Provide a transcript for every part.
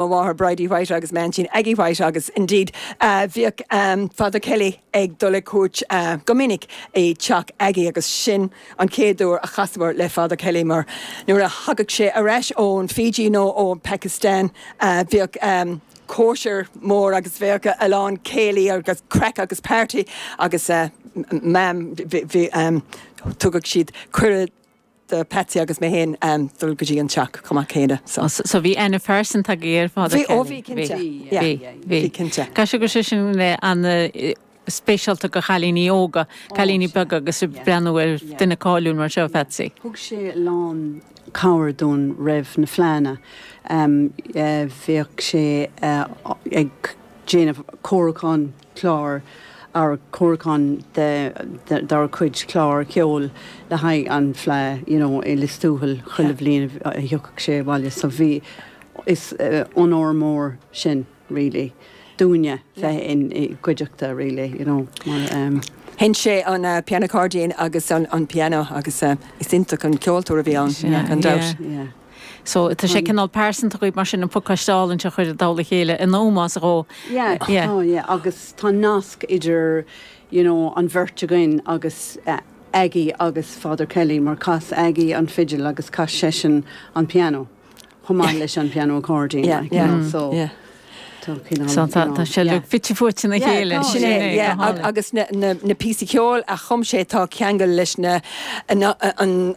mo mháthair Bridie White agus m'aintín Aggie White agus indeed bhíodh Father Kelly ag dul ag cuairt go minic i dteach Aggie agus sin an chéad uair a chasamar le Father Kelly mar nuair a thagadh sé ar ais ón Fiji nó ó Pakistan bhíodh cóisir mhór agus bhíodh a lán céilí agus craic agus party agus Mam thugadh siad cuireadh do Patsy agus mé féin dul go dtí an teach chomh maith céanna. So. So bhí aithne phearsanta agaibh ar Father Kevin? Bhí, ó bhí, cinnte. Bhí, Yeah, bhí, yeah, bhí. bhí, cinnte. Caithfidh sé go raibh sé sin an-speisialta do chailíní óga, cailíní beaga agus ag breathnú ar dhuine cáiliúil mar seo, Phatsy. Thug sé a lán cabhair dúinn roimh na fleadhanna. Bhíodh sé ag déanamh cúrsa an chláir ar ár gcomhair de dár cuid clár ceoil le haghaidh an Fhleadh you know i Lios Tuathail chuile bhliain a thiocfadh sé abhaile so bhí is onóir mór sin really dúinne a bheith ina chuideachta really you know mar eh. sheinn sé an piano accordion agus an piano agus eh is iontach an ceoltóir a bhí ann gan dabht. yeah yeah. So tá sé cineál pearsanta agaibh mar sin an pacáiste álainn seo a chur i dtoll a chéile in ómós dhó. Yeah, yeah, tá, yeah, agus tá nasc idir, you know, an bheirt againn agus Aggie agus Father Kelly mar chas Aggie an fidil agus chas seisean an pianó chomh maith leis an pianó accordion like, you know, so tá cineál, you know, yeah. So tá sé uilig fite fuaite ina chéile. Yeah, sin é, yeah, agus na píosaí ceoil a chum sé tá ceangal leis na, an,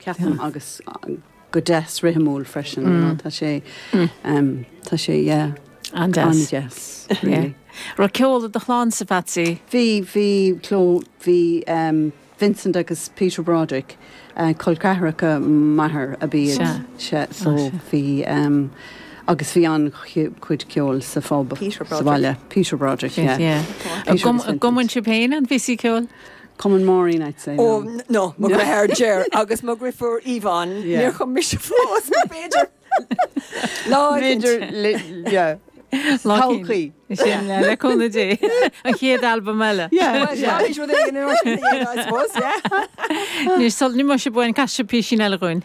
ceapaim, agus go deas rithimiúil freisin, you know, tá sé, tá sé, yeah, an-deas, really. Raibh ceol i do chlannsa a Phatsy? Bhí, bhí go leor, bhí Vincent agus Peter Broderick, col ceathracha m'athar ab iad sin, so bhí, agus bhí an-chuid ceoil sa phub sa bhaile, Peter Broderick, yeah. An gcumann sibh féin aon phíosaí ceoil? Cumann Máirín, I'd say, no. Oh, no, mo dhreatháir Ger agus mo dhrifiúr Yvonne, níor chum mise fós, nó b'fhéidir lá eicint. Todhchaí. Sea le cúnamh Dé. An chéad albam eile. Anois sula n-imíonn sibh uainn, casfaidh sibh písín eile dhúinn.